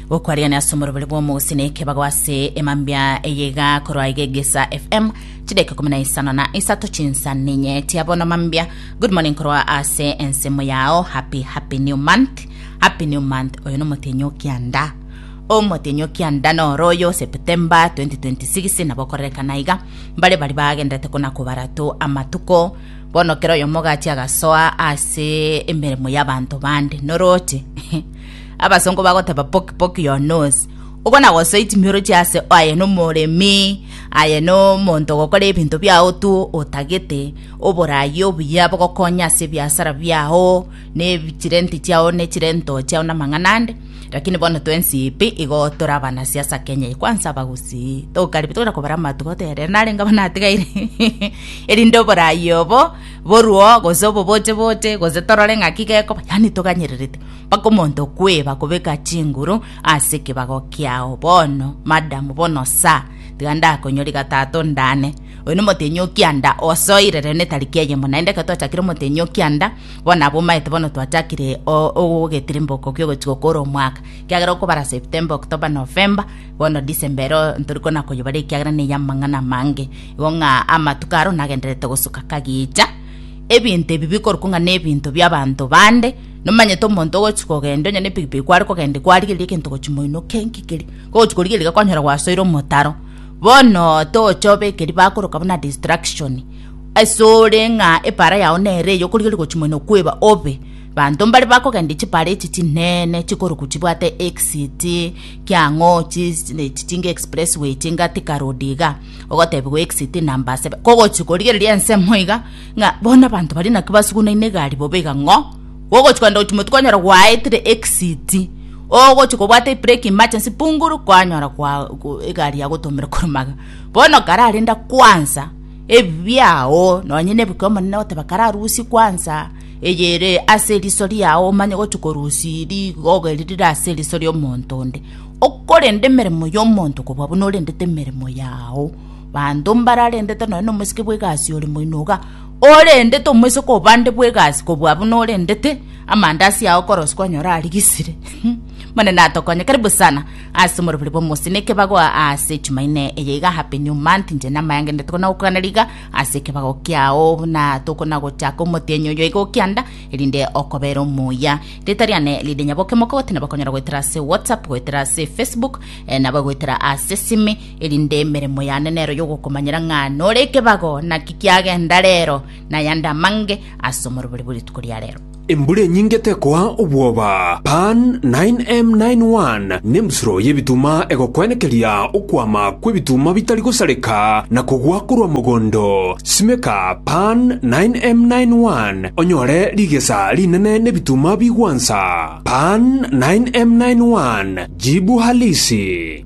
gokwariania ase omorobori bw'omogusi na ekebago ase emambia eyeiga korwa iga egesa fm chideka ikumi na isano na isato chinsa ninye tia bono mambia good morning korwa ase ensemo yao happy happy new month happy new month oyo nomotenyo kianda omotenyo kianda noro oyo septemba 2026 nabo okorerekana iga mbare bari bagenderete kona kobarato amatuko Bono kera oyomogati agasoa ase emeremo y'abanto bande, norooche. Abasongo bagoteba poke poke your nose. Obo nagosoiti mioroche ase aye nomoremi, aye nomonto ogokora ebinto biao tu otagete, oborayi obuya bogokonya ase ebiasara biao, chirenti chiao ne chirento chiao namang'ana ande, rakini bono twensi pi igo tore abanasiasa Kenya eye. Kwansa abagusii tokaribia togenda kobara amato igo toyarera narenge abana atigaire erinde oborayi obo boruo gose oboboche boche gose torore ng'aki gekoba yaani toganyererete mpaka omonto okweba kobeka chinguru ase ekebago kiao bono madam bono sir tiga ndakonyore gatato ndane Oyo nomotenyi o kianda osoire rero ne tariki eyemo, naende ekero twachakire omotenyi o kianda, bono abwo omaete bono twachakire ogogetirimboka okio ogochia gokora omwaka, ekiagera okobara September, October, November, bono December ero ntori kona koyebara ekiagera neye amang'ana amange, igo ng'a amatuko aro nagendererete gosuka kagicha. Ebinto ebi bikorokwa ng'a nebinto biabanto bande, nomanyete omonto ogochia kogenda onye ne pigipigi kware kogenda kwarigereria egento gochia moino kenki keria, kogochia korigereria iga kwanyora gwasoire omotaro. Bono tochobe ekeri bakoroka buna distraction asore ng'a epaara yao nere eye okorigereria gochia moino kweba obe banto mbare bakogenderia chipaara echi chinene chikoroku chibwate exit kiang'o chi echi chinga expressway chinga thika road iga ogotebiwa exit number sebe kogochia korigereria ensemo iga ng'a bono abanto baria naki basugunaine egari bobe iga ng'o. Gogochi korenta gochimwa tikonyora gwaetire exit ogochi kobwata ebreki emergency punguru kwanyora kwa egari yagotomera korumaga bono kararenda kwansa ebibiao nonye nebuke omonene goteba kararusie kwansa eyere ase eriso riao omanye gochi korusi rigogo eri rire ase eriso riomonto onde okorenda emeremo yomonto kobua buna orendete emeremo yao banto mbararendete nonye nomosike bwegasi ore moino iga. Orendete omoiseke obande bw'egasi kobua abwo norendete, amandaasi ao okorosia kwanyora arigisire. Monene atokonye, karibu sana ase omorobori bw'omosie na ekebago ase Jumaine eye iga Happy New Month, inche namayangenete kona gokuganera iga ase ekebago kiao buna tokona gochaka omotienyi oyo iga okianda erinde okobera omuya. Rita riane rinde nyaboke moke goteneba konyora goetera ase WhatsApp, goetera ase Facebook, eh, nabo goetera ase simi erinde emeremo yane nero y'ogokomanyera ng'a nore ekebago, naki kiagenda reero, na yande amange ase omorobori bwe rituko ria reero. Embura enyinge tekoa obwoba. Pan 9M91 nembusuro y'ebituma egokwenekeria okwama kw'ebituma bitari gosareka na kogwa korwa mogondo. Simeka Pan 9M91 onyore rigesa rinene n'ebituma bigwansa. Pan 9M91 Jibu Halisi.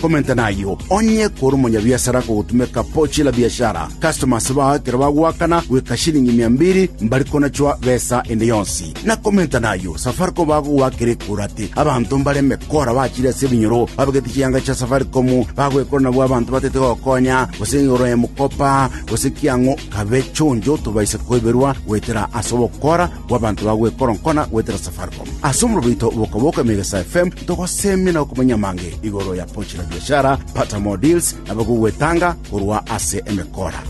Komenta nayio, onye kore omonyabiasara akogotumeka pochi la biashara, customers bao ekero bagoakana goika shilingi mia mbiri, mbari konachwa besa ende yonsi. Na komenta nayio, Safaricom bagogoakera ekura ati abanto mbare emekora bachire ase ebinyoro babegete chianga chia Safaricom bagoekora nabwo abanto batete gokonya gose igoro ya mokopa gose kiang'o kabe chonjo tobaise koiberwa goetera ase ogokora bw'abanto bagoekoronkona goetera Safaricom. Ase omorero oito bwoka-boka Emegesaa FM togoseemia na gokomanyia amange igoro ya Pochi la Biashara, Pata More Deals, na abagogwetanga korwa ase emekora.